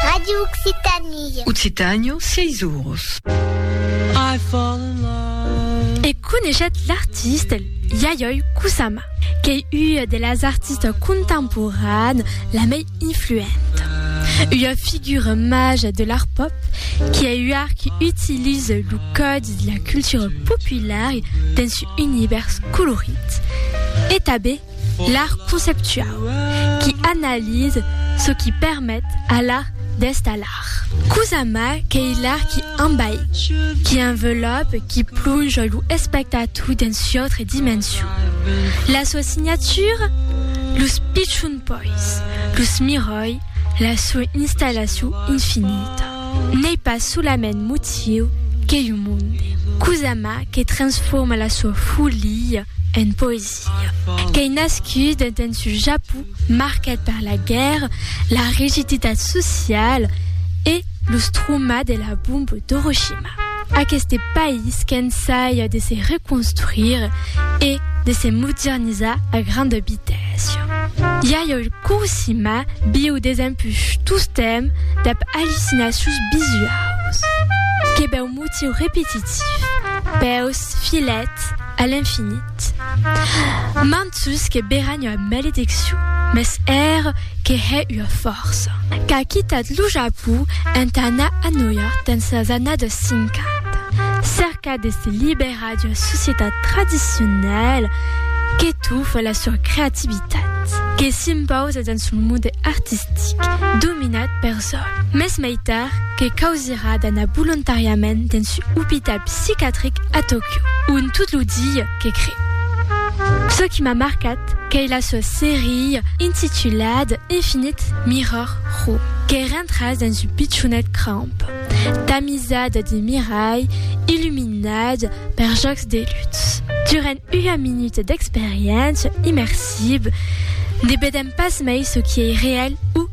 Radio Occitanie. Occitània, 6 oros. E coneishet l'artiste Yayoi Kusama, qu'ei ua de las artistes contemporanes la mei influenta. Ua figura maja de l'art pop qui ei ua qui utilise lo còdi de la cultura populara dens un univèrs colorit e tanben L'art conceptuau, qui analise çò qui permet a l'art d'èst a l'art. Cosa mai qu'ei l'art qui enbaï, qui envelòpe, qui plonja lo espectator dens u'autre dimension. La sua signatura? Los pichons pois, los miròi, la sua installacion infinita. N'ei pas solament motiu qu'ei un monde. Cosa mai que transforma la sua folia en poesia. Qu'ei nascut dens un Japon marcat per la guèrra, la rigiditat sociala e los traumas de la bomba d'Horoshima. Aqueste país qu'ensaja de se reconstruire e de se modernizar a granda vitèssa. Yayoi Kuroshima viu desempuish tostemp dab allucinacions visuaus, que bèu motiu repetitif, bèus filèt a l'infinit. Mat! Mantus que beran ua malediccion, mès ère que hè ua fòrça. Qu'a quitat lo Japó entà anar a Nòu York dens las annadas cinquanta, cercat de se liberar d'ua societat tradicionala que tofa la sua creativitat, que s'impausa dens lo monde artistic dominat pers Sò mès mai tard que causirà d'anar volontàriament dens un opital psicatric a Tòquio, ont tot lo dia que cre. Çò qui m'a marcat qu'ei la sua seria intitulada Infinite Mirror Room, que rentras dens un pichonet cramp, tamisada de miralh, illuminada per jòcs de lutz. Durant ua minuta d'experiéncia immersiva, ne vedèm pas mai çò qui ei real o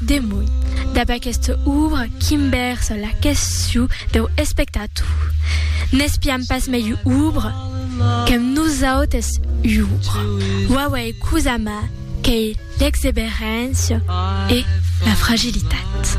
Demòi, dab aquesta òbra qui'm bèrsa la quesciu deu espectator, n'espiam pas mei òbra qu'amb nosautes iòbra, uauei cosa m'a qu'ei l'exeberéncia e la fragilitat.